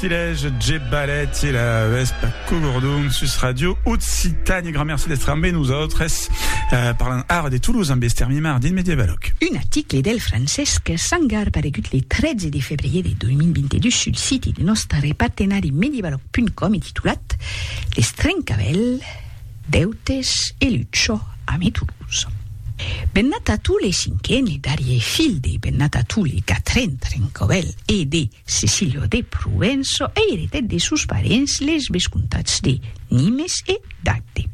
Tilèj Jep Balèt e la Vèsp Cogordon sus Ràdio Occitània. Grand merci d'èstre ambe nosautres. Parlan ara de Toulouse ambe Esther Mimard dins Mediavalòc. Un article del Francesc Sangar paregut le 13 de febrier de 2022 sul siti de nòstre partenari Mediavalòc.com e titulat Les trencavèls, deutes e lucha ame Toulouse. Bennat a tous les cinquen e darrier filh de Bennat a tous les quatren trencavèls e de Cecilio de Provenço eiretèt de sos parents les vescomtats de Nimes e d'Agde.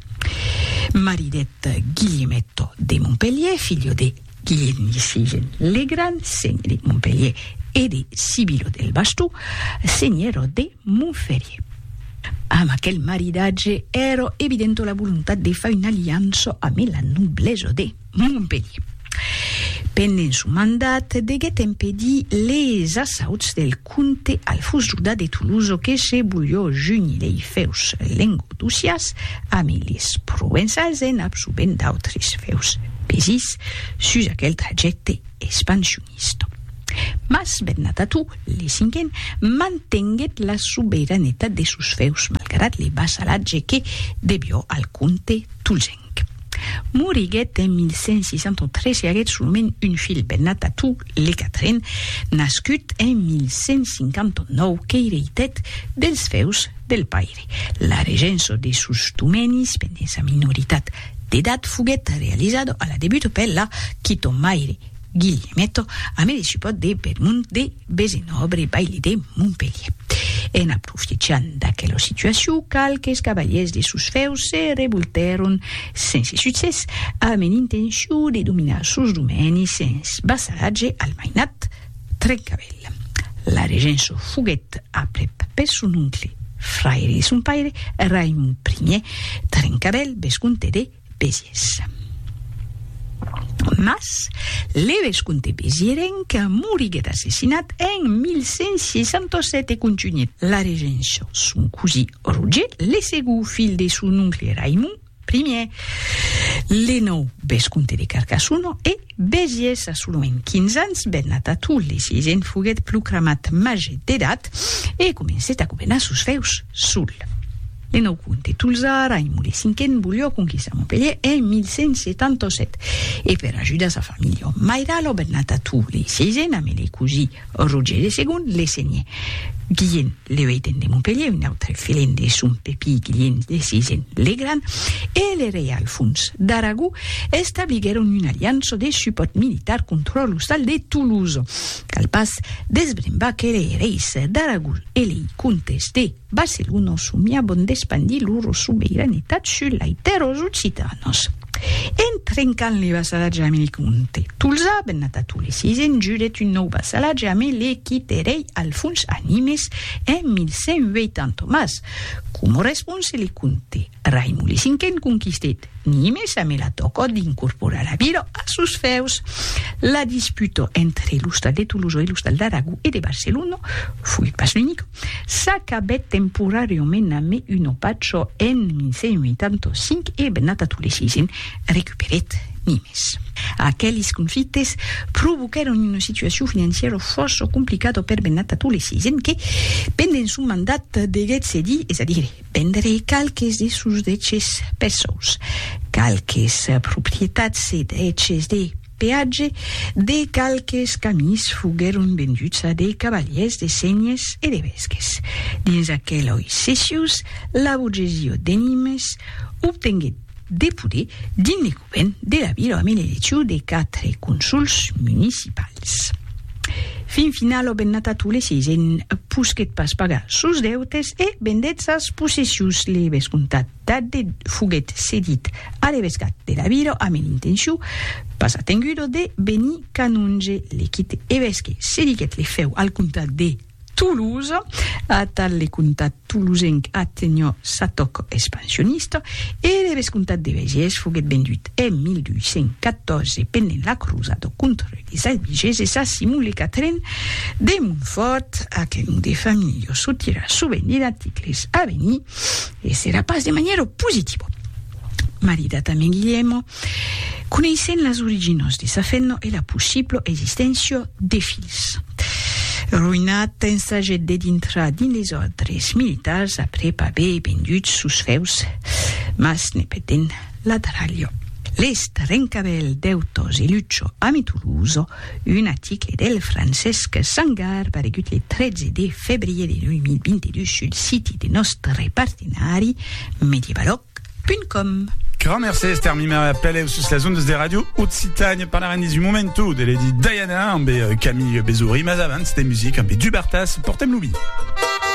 Maridèt Guilhemetto de Montpelhier, filho de Guilhèlm de Segen le Grand, senhe de Montpelhier, e de Sibilo del Bastó, senhèro de Montferrier. Amb aquel maridatge èra evidenta la volontat de far una aliança amé la noblesa de. Montpelhier. Pendent son mandat, deguèt empedir les assauts del comte Alfons Juda de Tolosa que se volhó junir lei fèus lengodocias amé les provençals en absorbent d'autres fèus pesits sus aquel trajècte expansionista. Mas Bernat Ató, le cinquen, mantenguèt la soberanetat de sos fèus malgrat le vassalatge que devió al comte tolzenc. King. Moriguèt en 1163 e aguèt solament un filh, Benatatu le Quatren, nascut en 1159, qu'eireitèt dels fèus del paire. La regença de sos domenis pendent sa minoritat d'edat foguèt realizada a la debut per la quitomaire Guillemèto, amé de supòrt de Bermond de Besin òbri baili de Montpelhier. En aprofitjant d'aquela situacion, qualques cavaliers de sos fèus se revoltèron sense succès, amb en intencion de dominar sos domènis sens vassalatge al mainat Trencavèl. La regença foguèt aprèp per son oncle, fraire de son paire, Raimond Ier, Trencavèl, vescomte de. Besies. Mas, le vescomte Besiérenc moriguet assassinat en 1167 e contunhèt la regença son cosí Roger, le segó filh de son oncle Raimond Ier. Le nòu vescomte de Carcassona e Besies a solament 15 ans, ben Natatou, le sisent, foguèt proclamat màger d'edat e comencèt a governar sos fèus sol. En au comte tolzà, Raimon de Cinquen volió conquistar Montpelhier en 1177 e per ajudar sa familha òm mairala au bernat a Tours lei seisen amé lei cosí Roger de Segond le senhè Guilhent le Ueiten de Montpelhier, un autre filent de son pepí Guilhent le Seisen le Gran e le rei Alfons d'Aragó establiguèron una aliança de supòrt militar contra l'ostal de Toulouse. Cal pas desbrembar que lei reis d'Aragó e lei comtes de Barcelona somiabon d'espandir loro sobeiranitat sus lai tèrras occitanas. En trencant le vassalatge ame le comte Tolzà, Bennatato le sisèn jurèt un nòu vassalatge ame le quit erei Alfons a Nimes en 1180 mas, coma response, le comte. Raimon le Cinquen conquistèt Nimes amé la tòca d'incorporar la vila a sos fèus. La disputa entre l'ostal de Tolosa e l'ostal d'Aragó e de Barcelona, foguèt pas l'unica, s'acabèt temporàriament amé una pacha en 1185 e Bernat Atau le Sisen recuperèt Nimes. Aqueles conflictes provoquèron una situacion financièra fòrça complicada per Bernat Atau le Sisen que, pendent son mandat, deguèt cedir, es a dire, Vendrei qualques de sos deches peçons, qualques proprietats e deches de peatge de qualques camins foguèron venduts a de cavalièrs de senhes e de vesques. Dins aqueloi cessius, la burgesia de Nimes obtenguèt de poder dins le govern de la vila amb l'eleccion de 4 consuls municipals. Fin final o bennata tu le seisen posquet pas pagar sos deutes e vendèt sas possessions le vescomtat d'Adde foguet cedit a l'evescat de la vila amb l'intencion pas atengudo de venir canonge le quite evesque cediguèt le fèu al comtat de Toulouse, atal le comtat tolosenc atenhò sa tòc expansionista e le vescomtat de Bèges foguèt vendut en 1214 pendent la crosada contra les Albigeses a Simon le Quatren de Montfòrt, a quel nom de familha çò tira sovent de d'articles a venir e serà pas de manièra positiva. Maridat a Mèn Guilhèmo, Coneissent las originas de sa fenna e la possibla existéncia de filhs. Roinat ensaget de dintrar dins les òrdres militars aprèp aver vendut sos fèus, mas ne petent la dralha. Les trencavèls dèutas e lucha ame Tolosa, un aticle del Francesc Sangar paregut le 13 de febrier de 2022 sul siti de nòstre partenari Medievalog. com. Grand merci Esther Mimera Peleu sus las ondas de Radio Occitània parlarem dins un momentu de Lady Diana amb Camille Bezouri mas abans de music amb Dubartas portem lo vi.